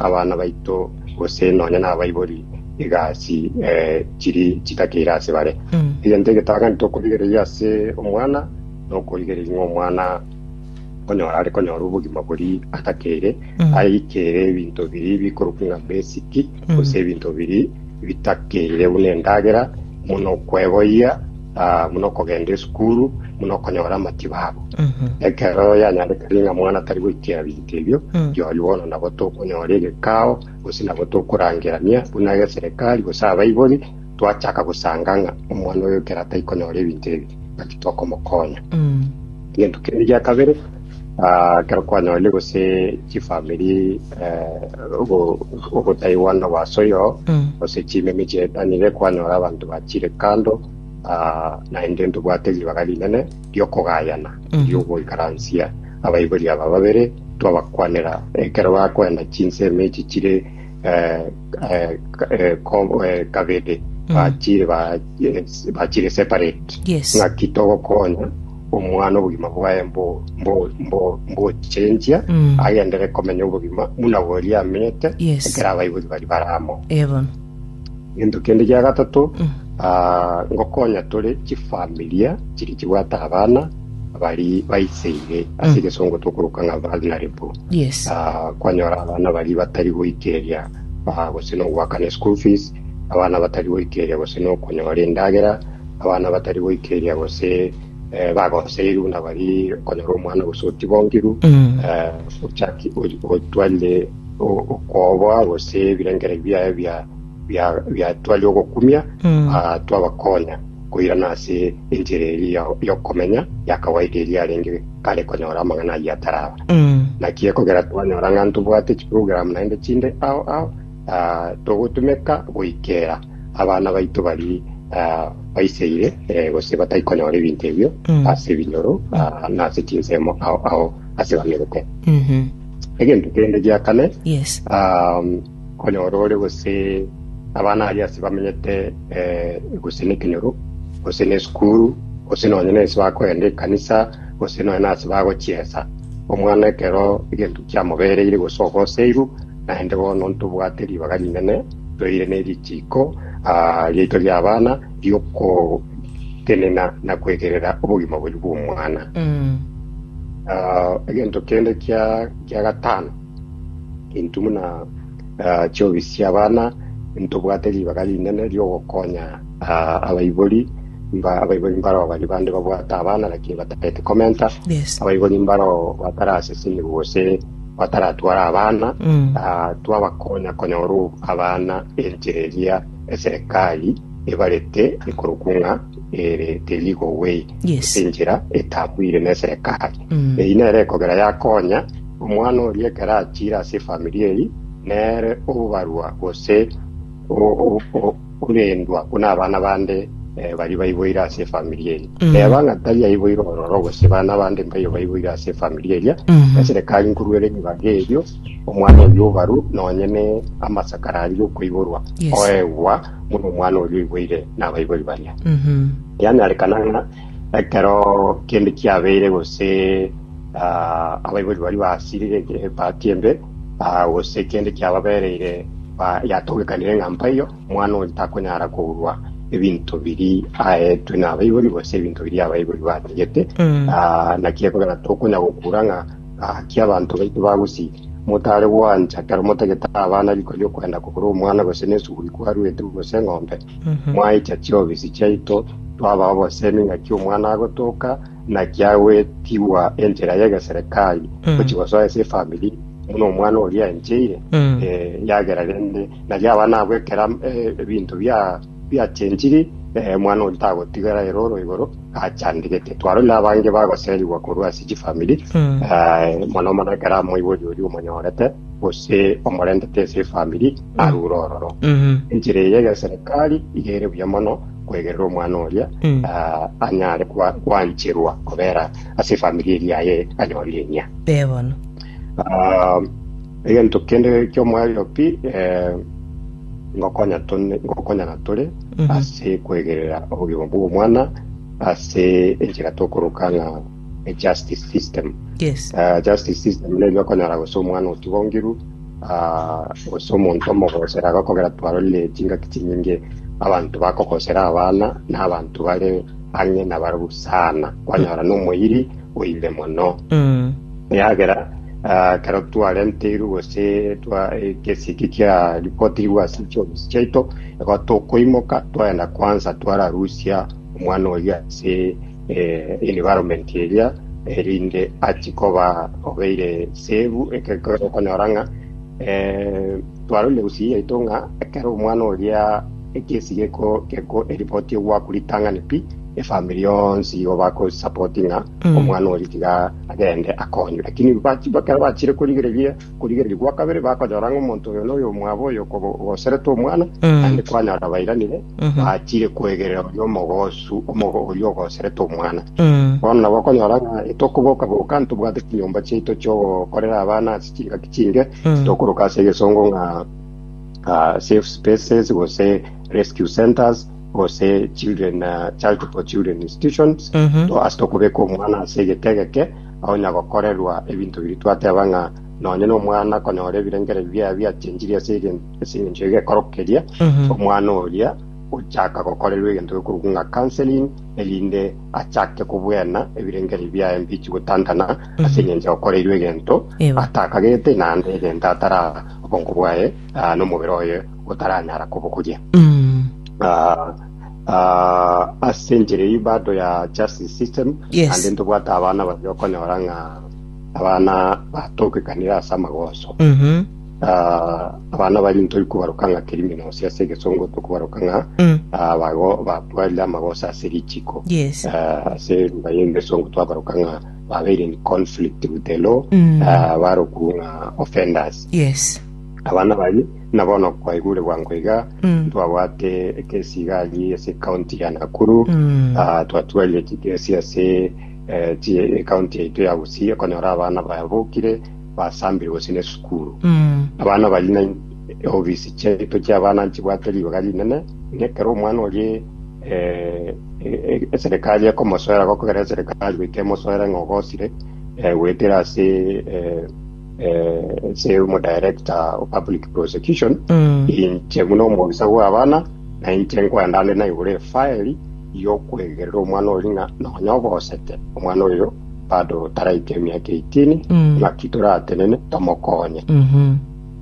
Abana baito, gose nonya nabaibori egasi chiri chitakeire ase bare. Egento egetang'ani tokorigereria ase omwana, nokorigereria ng'a omwana konyora are konyora obogima boria atakeire, aikere ebinto biria bikorokwa ng'a basic, gose ebinto biria bitakeire buna endagera, buna okweboyia, buna okogenda esukuru, buna okonyora amatibabu. Ekero yanyarekire ng'a mwana tari goikera. Ase erio, rirorio bono nabo tokonyora egekao, gose nabo tokorangerania buna egeserekari gose abaibori, twachaka gosanga ng'a omwana oyo ekero ataikonyora ebinto ebi, naki tokomokonya. Egento kende gia kabere, ah, ekero kwanyorire gose chifamiri eh, ogo- ogotaigwana gwa ase oyogo, gose chimemi chietanire, kwanyora abanto bachire kando, ah, naende ntobwate ribaga rinene, ri'okogayana ri'ogoikaransia abaibori aba babere, twabakwanera ekero bakoenda chinsemo echi chire kabere bachire ba bachire separate. Yes. Ng'aki togokonya omwana obogima bwaye mbo mbo mbo mbochenjia Mm. agendere komenya obogima buna boria amenyete Yes. ekero abaibori bari baramo. Ebono. Gento kende gia gatato, ah, ngokonya tore chifamilia chiria chibwate abana baria baiseire ase egesongo tokoroka ng'a vulnerable. Yes. Ah, kwanyora abana baria batari goikereria ah, gose nogoakana school fees abana batari goikereria gose nokonyora endagera abana batari goikereria gose eh, bagoseirwe na bari konyora omwana gose otibonkirwe Mm. eh, ochaki- o- otwarire o- okoboa gose ebirengeri biaye bia biatwa ri'ogokumia twabakoonya koirana ase enchera eria y'okomenya ya kawaida eria arenge kare konyora amang'ana ayio ataraba. Naki ekogera twanyora ng'a ntobwate chiprogramu naende chinde ao ao togotumeka goikera abana baito baria baiseire gose batai konyora ebinto ebio ase ebinyoro na ase chinsemo ao ao ase bamerete. Egento kende gia kane, Konya orore gose abana aria ase bamenyete, ee, gose nekenyoro, gose nesukuru, gose nonya nense bakoenda ekanisa, gose nonya nase bagochiesa. Omwana ekero egento kiamobereire gose ogoseirwe, naende bono ntobwate ribaga rinene toire ne richiiko aa riaito ri'abana riokotenena na kwegerera obogima boria bw'omwana. Aa, egento kende kia kia gatano, Intwe buna ah, chiobi chi'abana ntobwate ribaga rinene ri'ogokonya ah, abaibori mba abaibori mbarao bari bande babwate abana lakini bataeti komenta Yes. abaibori mbarao bataraseseniwa gose bataratwara abana Mm. ah, twabakonya konyora ob- abana enchera eria eserikali ebarete ekorokwa ng'a ere the legal way Yes. enchera etabwire na eserikali Mm. eyi nere ekogera yakonya Omwana oria ekero achiire ase efamiri eye, nere obobarwa gose orendwa buna abana bande baria baiboire ase efamiri eye. Reba ng'a tari aiboire ororo gose bana bande mbaiyo baiboire ase efamiri eria, eserekari nkoruere ebibaga ebio, omwana oyio obarwe nonye ne amasakara aria okoiborwa, oegwa buna omwana oria oiboire nabaibori baria. Yanyarekana ng'a ekero kende kiabeire gose. abaibori baria basirire ekiya epaati embe, gose kende kiababereire yatogekanire ng'a mpaiyo, omwana oyo takonyara kourwa ebinto biria aetwe nabaibori, gose ebinto biria abaibori bategete. Naki ekogera tokonya gokura ng'a gaki abanto baito bagosirire. Motare gwancha ekero motagete abana riko riokwenda kogora omwana gose nesuguri kwaruete gose eng'ombe, mwaicha chiobisi chiaito twabao obosemi ng'aki omwana agotoka, Naki agwetigwa enchera y'egeserekari gochia gosoa ase efamiri buna omwana oria aencheire, Mm. eh, yagera rende naki aba nabwo ekera eh, ebinto bia biachenchiri eh, omwana oria tagotigara ere oro igoro achandigete twarorire abange bagoserigwa korwa ase chifamiri Mm. eh, mono mono ekero amoibori oria omonyorete gose omorentete ase efamiri arure ororo Mhm. enchera eye y'egeserekari iga ere buya mono kwegerera omwana oria Mm. ah, anyare kwa- kwancherwa kobera ase efamiri eria yaye anyorire eng'ia Ee bono. Ah, egento kende ki'omoerio pi eh, ngokonya tone- ngokonyana tore Mhm. ase kwegerera obogima bw'omwana ase enchera tokoroka ng'a a justice system Yes. Ah, justice system neri okonyara gose omwana otigongiru Aa, gose omonto omogosera agakogera. Twarorire chingaki chinyinge, abanto bakogosera abana na abanto bare ang'e nabarabwo sana. Kwanyora nomoiri oirire mono, eagera aa, ekero twarenteirwe gose twa ekesi eki kiaripotirwe ase chiofisi chiaito, igo tokoimoka twagenda kwansa twararusia omwana oria ase environment eria, erinde achi koba obeire save ekero okonyora ng'a twarorire gusii yaito ng'a ekero omwana oria ekesi geko geko eripoti ogwakwa ritang'ani pi efamiri yonsi igo bakosupport ng'a omwana oria tiga agende akonywe lakini bachi ekero bachire korigereria Korigereria gwa kabere bakonyora ng'a omonto oyo noyo omwabo oyo okobogoserete omwana, Mm. naende kwanyora bairanire, Mhm. bachire kwegerera oria omogosu, omogo oria ogoserete omwana. Mm. Bono nabo okonyora ng'a etokoboka-boka ntobwate chinyomba chiaito chiogokorera abana ase chingaki chinge, Mm. tokoroka ase egesongo ng'a ah, safe spaces, gose rescue centers, gose children, ah, child for children institutions, Mhm. To- ase tokobeka omwana ase egete egeke, onya gokorerwa ebinto biria twateba ng'a nonye nomwana konyora ebirengererio biaye biachenchiri ase engencho y'egekoro keria, omwana oria ochaka gokorerwa egento gekorokwa ng'a counseling, erinde achake kobwena ebirengererio biaye mbichi gotantana ase engencho akoreirwe egento atakagete naende egento atara obongo bwaye nomobere oye otaranyara kobogoria. Ah, ase enchera eyio bado ya justice system Yes. ande ntobwate abana baria okonyora ng'a abana batokekanire ase amagoso Mhm. Ah, abana bari ntoi kobaroka ng'a criminals ase egesongo tokobaroka ng'a Mm. ah, bago- batwarire amagoso ase richiko Yes. Ah, ase lugha y'engesongo twabaroka ng'a babeire in conflict with the law Mm. ah, barokwu ng'a offenders Yes. abana bari Buna bono kwaigure bwango iga Mm. twabwate ekesi iga ayi ase county ya Nakuru Mm. Ah, twatwarire chikesi ase eh, chi- county yaito ya Gusii ekonyora abana babokire basambire gose ne sukuru Mm. abana bari na ofisi chiaito chia abana nchibwate ribaga rinene nekero omwana orie eh, e- e- serikali ekomosoera gokogera serikali goika emosoera ng'a ogosire eh, goetera ase eh, Ase omodaerekta o public prosecution, inche buna omobisa bw'abana, nainche nkwenda nde naigure efaeli y'okwegerera omwana oria ng'a nonya obosete omwana oyo bado taraika emiaka 18 ng'aki toratenene tomokonye.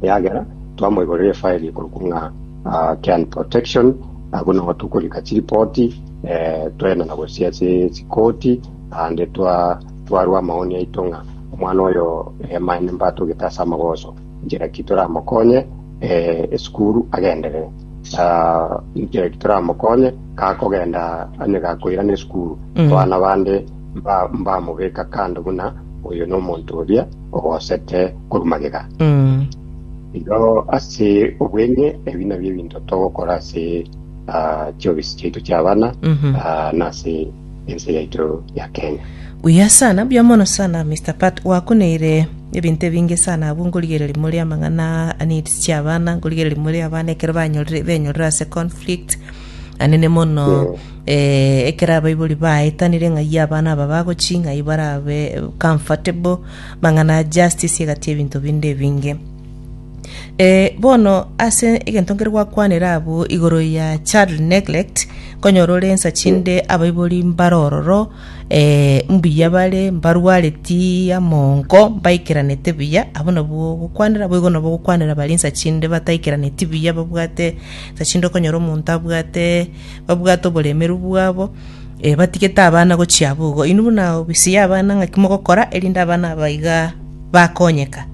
Eagera twamoigorera efaeli ekorokwa ng'a ah, child protection, abwo nabo tokorika chiripoti eh, twaenda na gose ase chikoti ande twa twarua amaoni aito ng'a omwana oyo emaene mbatogete ase amagoso, inchera ki toramokonye eh, esukuru agenderere. Ah, inchera ki toramokonye gakogenda onye gakoirana esukuru, Mm. abana bande mba- mbamobeka kando buna oyo nomonto oria ogosete korwa magega. Mm. Igo ase obweng'e ebi nabio ebinto togokora ase ah, chiofisi chiaito chi'abana Mhm. ah, na ase ense yaito ya Kenya. Buya sana, buya mono sana Mister Pat, gwakuneire ebinto ebinge sana abwo nkorigereria more amang'ana a needs chia abana, nkorigereria more abana ekero banyorire benyorire ase conflict anene mono eh, ekero abaibori baetanire ng'ai abana aba bagochi ng'ai barabe comfortable, mang'ana a justice egati ebinto binde ebinge. Eh, bono ase egento nkere gwakwanera abwo igoro ya child neglect nkonyora ore ensa chinde abaibori mbare ororo eh, mbuya bare mbarwareti amonko mbaikeranete buya abwo nabwo ogokwanera boigo nabwo ogokwanera baria ensa chinde bataikeraneti buya babwate ensa chinde okonyora omonto abwate babwate oboremeru bwabo eh, batigete abana gochia abwo igo inwe buna ofisi ya abana ng'aki mogokora erinde abana aba iga bakonyeka.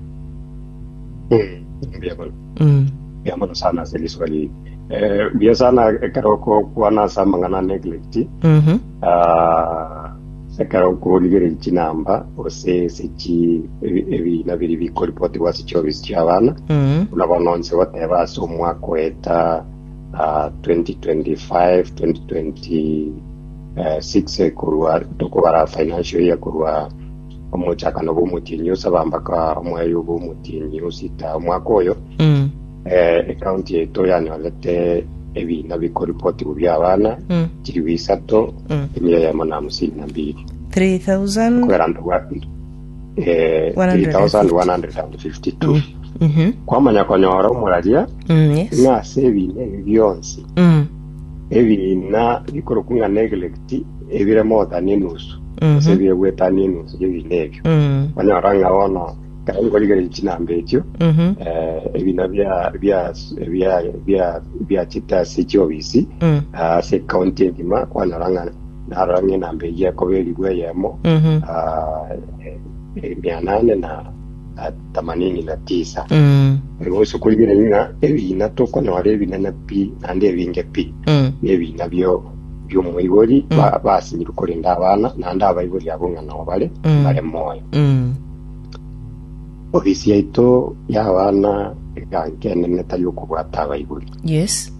Biamono. Mm. Biamono sana ase risoka riye. Eh, bia sana ekero okokwana ase amang'ana a neglect. Mhm. Ah, ekero okorigereria chinamba ase ase chi ebi- ebina biri bikoripotigwa ase chiofisi chia abana. Mm. Buna bono nse goteba ase omwaka oeta ah, 2025 2026 eh, korwa tokobara financial year korwa Omochakano bw'omotienyi osaba mpaka omwaeyo bw'omotienyi osita omwaka oyo Mm. eh, ekaunti yaito yanyorete ebina bikoripotigwa bia abana Mm. chilifu isato Mm. emia yamo na hamsini na mbili 3000 kubera nto bwa eh, 3152 Mhm. kwamanya konyora omuraria Mm, yes. ng'ase ebina ebi bionsi Mm. Ebiina bikorokwa ng'a neglect ebire mogotania enusu ase Mhm. ebire gwetania enusu y'ebiina ebio Mm. onyora ng'a bono ekero nkorigereria chinamba echio Mhm. eh, ebiina bia bia bia bia bia chita ase chiobisi Mm. ah, ase county engima kwanyora ng'a narora ng'a enamba eyio ekoba erigwe eyemo Mhm. ah, eh, eh, mia nane na na themanini na tisa. Mm. Bosa okoigereri ng'a ebiina tokonyora ebinene pi naende ebinge pi Mm. nebiina bio biomoibori Mm. ba- basinyirwe korende abana naende abaibori abwo ng'a nao bare Mm. bare moyo Mm. ofisi yaito y'abana eganka enene tari okobwata abaibori Yes.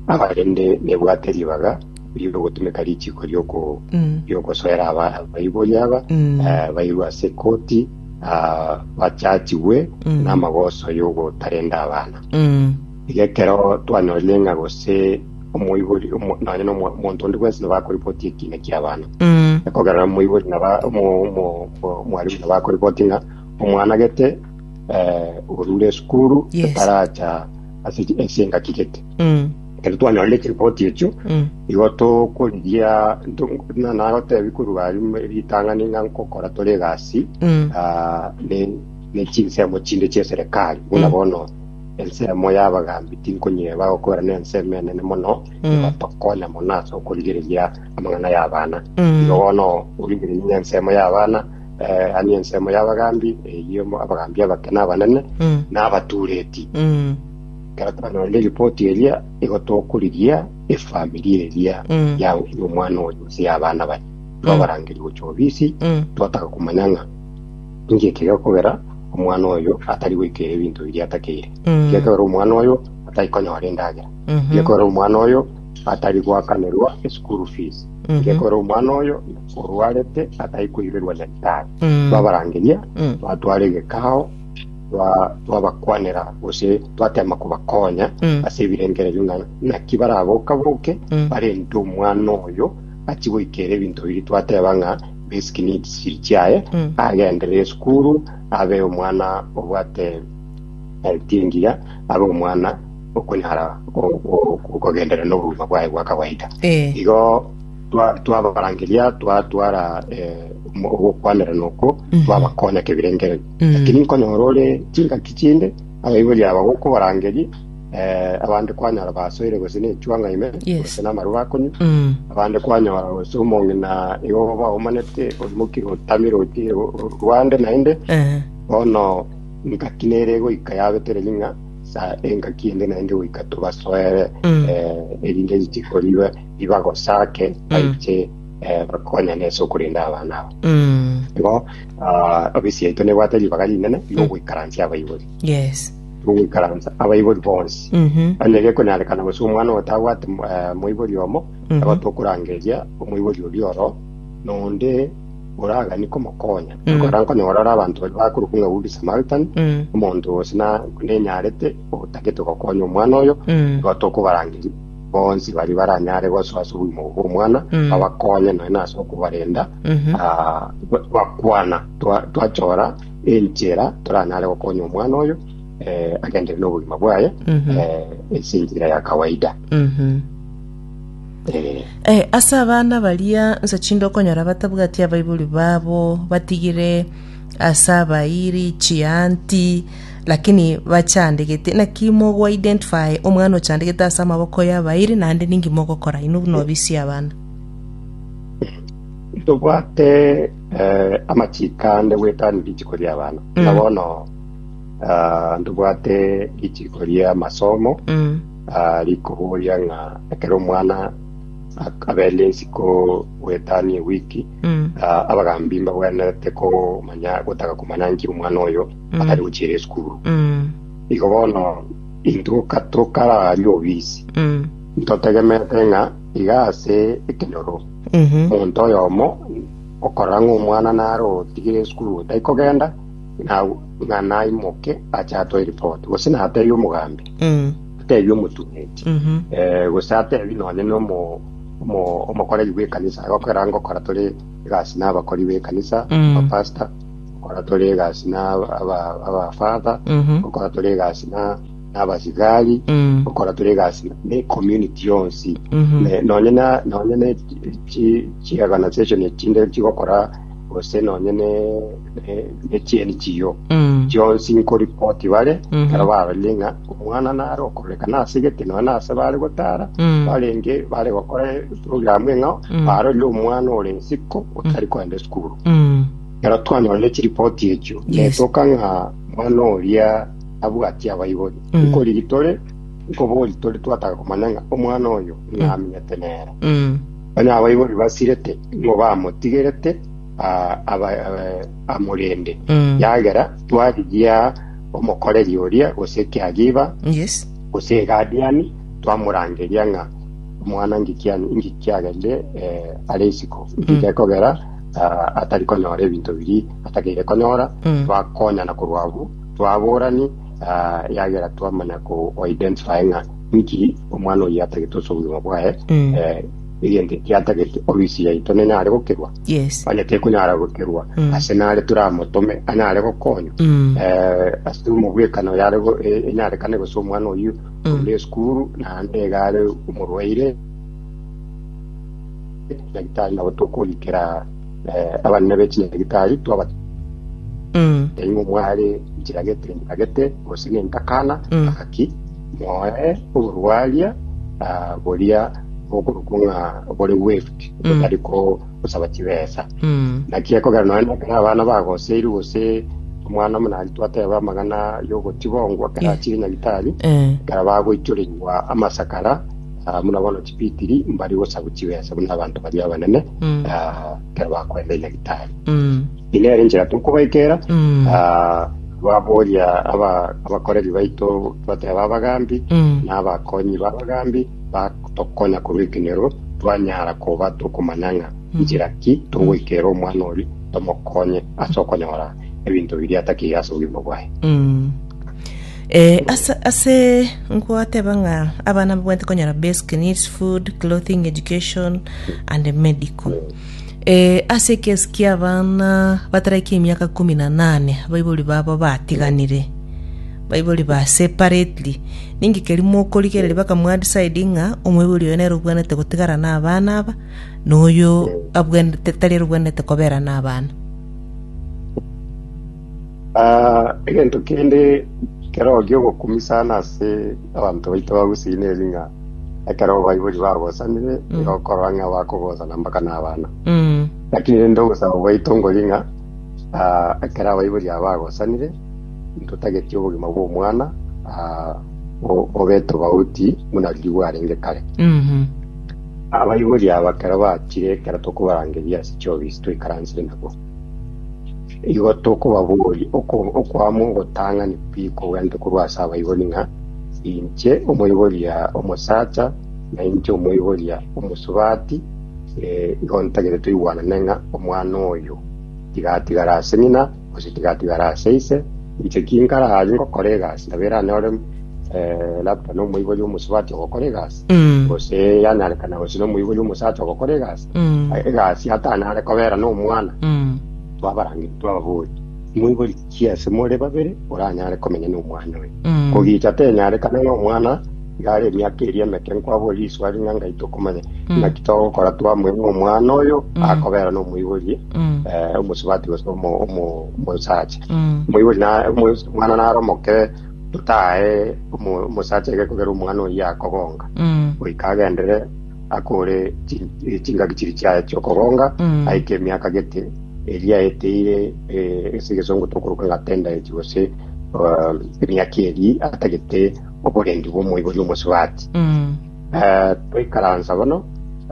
abarende nebwate ribaga riogotumeka richiko rioko Mm. riogosoera aba- abaibori aba Mm. eh, bairwe ase ekoti ah, bachachigwe Mm. n'amagoso y'ogotarenda abana Mm. iga ekero twanyorire ng'a gose omoibori omo- nonye nomo- omonto onde bwensi nabakoripoti ekina kia abana Mm. ekogerera moibori naba mo- mo- mo- mwarimu nabakoripoti ng'a omwana gete eh, orure esukuru Yes. etaracha ase ase engaki gete Mm. ekero twanyora chiripoti echio Mm. igo tokorigia nagotebi korwa ari mu- ritang'ani ng'a nkokora tore egasi Mm. ah, ne- ne chinsemo chinde chia eserikali buna Mm. bono ensemo y'abagambi tinkonyeba gokora na ensemo enene mono Mm. igotokonya mono ase okorigereria amang'ana y'abana Mm. igo bono origereria ng'a ensemo y'abana eh, ani ensemo y'abagambi eyio mo- abagambi abake n'abanene Mm. n'abatureti Mm. Ekero twanyorire ripoti eria, igo tokorigia efamiri eria Mm. ya ya omwana oyo gose ya abana baye, twabarangeria gochia ofisi, Mm. twataka komanya ng'a inki ekegekogera omwana oyo atari goikera ebinto biria atakeire, Mm. ekegekogera omwana oyo atari konyora endagera, Mhm. ekegekogera omwana oyo atari goakanerwa eschool fees, Mhm. ekegekogera omwana oyo orwarete atari koiberwa nyagetari. Mm. Twabarangeria, Mm. twatwara egekao, twa- twabakwanera gose twatema kobakonya Mm. ase ebirengererio ng'a naki baraboka-boke Mm. barente omwana oyo achie goikera ebinto biria twateba ng'a basic needs chiri chiaye Mm. agendere esukuru abe omwana obwate health engiya abe omwana okonyara o- o- kogendera n'obogima bwaye bwa kawaida Eh. igo twa- twabarangeria twatwara eh, omo- ogokwanera noko Mm. twabakonya kebirengererio Lakini nkonyora ore chingaki chinde abaibori aba gokobarangeria eh, abande kwanyora basoire gose nechuang'a ime Yes. gose namarwa akonywa Mm. abande kwanyora gose omong'ina igo baomanete orimokire otamire oti rwande naende Eh. bono ngaki nere goika yabetera ring'a sa engaki ende naende goika tobasoere Mm. eh, erinde richikoribe ribagosake baiche eh, bakonyane ase okorenda abana abo Mm. igo Ah, ofisi yaito nebwate ribaga rinene ri'ogoikaransia abaibori Yes. ri'ogoikaransa abaibori bonsi Mhm. ande gekonyarekana gose omwana otabwate mo- eh, moibori omo Mhm. aba tokorangeria omoibori oria oro nonde oragani komokonya Mhm. kora nkonyora ore abanto bari bakoruka ng'a good samaritan Mm. omonto gose na- nenyarete otagete gokonya omwana oyo Mm. igo tokobarangeria bonsi baria baranyare gosoa ase obogima obwo bw'omwana Mm. babakonye nonya na ase okobarenda Mhm. ah, ba- bakwana Twa- twachora enchera toranyare gokonya omwana oyo eh, agenderere n'obogima bwaye Mhm. eh, ase enchera ya kawaida Mhm. Eh, Eh, ase abana baria nsa chinde okonyora batabwati abaibori babo batigire ase abairi chianti lakini bachandegete naki mogo identify omwana ochandegete ase amaboko y'abairi naende ninki mogokora inwe buna obisia abana tobwate eh, amachiko ande gwetani rituko ria abana na bono ah, tobwate rituko ria amasomo mm. ah, rikoboria ng'a ekero omwana ak- abere ensiko gwetani ewiki Ah, abagambi mbagwenerete komanya gotaka komanya nki omwana oyo atari gochiera esukuru igo bono intwe ka tokarari obisi ntotegemete ng'a iga ase ekenyoro omonto oyomo okorora ng'a omwana nare otigire esukuru otari kogenda na- ng'a naimoke ache atoe ripoti gose natebie omogambi atebie omotumeti eh, gose atebie nonye nomo Omokoreri bw'ekanisa agokera ngokora tore egasi na abakori b'ekanisa, abapastor, gokora tore egasi na abafather, gokora tore egasi na abasigari, gokora tore egasi na ecommunity yonsi. Nonye na chiorganization echinde chigokora gose nonye ne ne- nechieni chiyo Mm. chionsi nkoripoti bare Mhm. ekero barorie ng'a omwana nare okorekana ase gete nonya na ase bare gotara Mm. barenge bare gokora programu eng'ao Mm. barorie omwana ore nsiko otari koenda esukuru Mm. ekero twanyorire chiripoti echio Yes. netoka ng'a omwana oria abwati abaibori Mm. nkorigi tore nkobori tore twataka komanya ng'a omwana oyo ng'aminyete nere Mm. Onye abaibori basirete nigo bamotigerete aa, aba- aa- amorende Mm. yagera twarigia omokoreri oria gose ekiagiba Yes. gose egadiani twamorangeria ng'a omwana ngikiani ngikiagerire eh, are isiko ngiche kogera ah, atari konyora ebinto biri atakeire konyora Mm. twakonyana korwa abwo twaborani ah, yagera twamanya ko identify ng'a Nki omwana oyio atagete ase obogima bwaye? Mm. Eh, egento eki atagete ofisi yaito nene are gokerwa Yes. onye tekonyara gokerwa Mm. ase nare toramotome anyare gokonywa Mm. Eh, ase omobwekano yare go- e- enyarekane gose omwana oyio Mm. ore esukuru naende iga are omorwaire nyagitari nabo tokorikera eh, abanene bechinyagitari twaba Mm. teimo mware nchiragete nchiragete gose nentakana Mm. aki Moe oborwaria ah, boria bokorokwa ng'a bore weft botari kosaba chibesa Mm. naki ekogera nonya nekero abana bagoseirwe gose omwana omonari twateba amang'ana y'ogotibongwa kera Yeah. achire nyagitari Eh. kera bagoichoreigwa amasakara ah, muna bono chipitiri mbari gosabwa chibesa buna abanto baria abanene Mm. Ah, ekero bakoenda Nyagetari. Eye nere enchera tokobaikera ah, baboria aba- abakoreri baito twateba abagambi na abakonyi b'abagambi batokonya korwa ekenyero twanyara koba tokomanya ng'a nchera ki togoikera omwana oria tomokonye ase okonyora ebinto biria atakeire ase obogima bwaye Eh, ase, ase nkwateba ng'a abana mbabwate konyora basic needs, food, clothing, education and medical. Eh, ase ekesi kia abana bataraiki emiaka kumi na nane abaibori babo batiganire baibori ba separately ninki keri mokorigereria bakamwadecide ng'a omoibori oyo nere obwanete gotigara na abana aba na oyo abwanete tari ere obwanete kobera na abana Ah, egento kende keroo giogokumisa na ase abanto baito bagusii neri ng'a ekero baibori bagosanire nigo okorora ng'a bakogosana mpaka n'abana Mm. lakini rende ogosaba gwaito ngori ng'a ah, ekero abaibori aba bagosanire ntotageti obogima bw'omwana ah, bo- bobe tobauti buna riria bwarenge kare Mhm. abaibori aba ekero bachire ekero tokobarangeria ase chiofisi twaikaransire nabo Igo tokobaboria okwama ogotang'ani kwikogwenerete korwa ase abaibori ng'a inche omoiboria omosacha na inche omoiboria omosubati, igo ntagete toigwanane ng'a omwana oyo tiga atigare ase ng'ina gose tiga atigare ase ise, inche ki nkarare ngokora egasi nabo eranyore labda nomoibori omosubati ogokora egasi, gose yanyarekana gose nomoibori omosacha ogokora egasi. Mm. A- egasi atanare kobera nomwana Mm. twabarangiri twababori moibori chiase more babere oranyare komenya nomwana oyo Mm. kogicha tenyarekana nomwana igare emiaka eri emeke nkwabori iswari ng'a ngai tokomanya Mm. naki togokora twamweng'a omwana oyo Mm. akobera nomoibori Mm. eh, omosubati gose omo- omo- omosacha Mm. moibori na- omo- omwana naro omoke totae omo- omosacha ege kogera omwana oyo akogonga Mm. goika agendere akore chi- eh, chingaki chiri chiaye chiokogonga Mm. aike emiaka gete eria eteire eh, ase egesongo tokoroka ng'a tendaeti gose eh, emiaka eri atagete oborendi bw'omoibori omosubati Mm. Eh, twaikaransa bono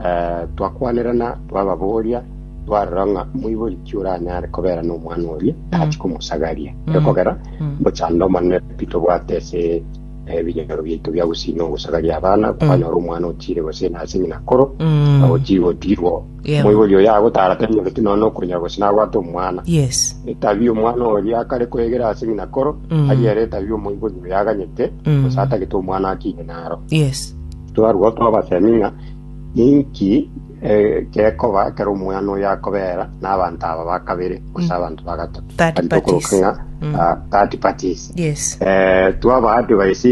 eh, twakwanerana twababoria twarora ng'a moibori ki oranyare kobera n'omwana oria achi komosagaria Mm. ekogera Mm. bochando omonene pi tobwate ase ebinyoro biaito bia gusina ogosaga ria abana, kwanyora omwana otiire gosina ase ng'ina koro, Mm. na otiire gotiirwa. Yeah. Omoibori oyo agotara tanyoreti nonya okonya gose nabwate omwana. Yes. Etabia omwana oria akare kwegera ase ng'ina koro, Mm. aria ere etabia omoibori oyo aganyete, Mm. gose atagete omwana akine naro. Yes. Twarwo twabasemi ng'a ninki Egekoba ekero omwana oyo akobeera n'abanto aba ba kabere gose abanto ba gatato, Third tari tokoroka parties. ng'a ah, third parties, Yes. eh, twabaa advice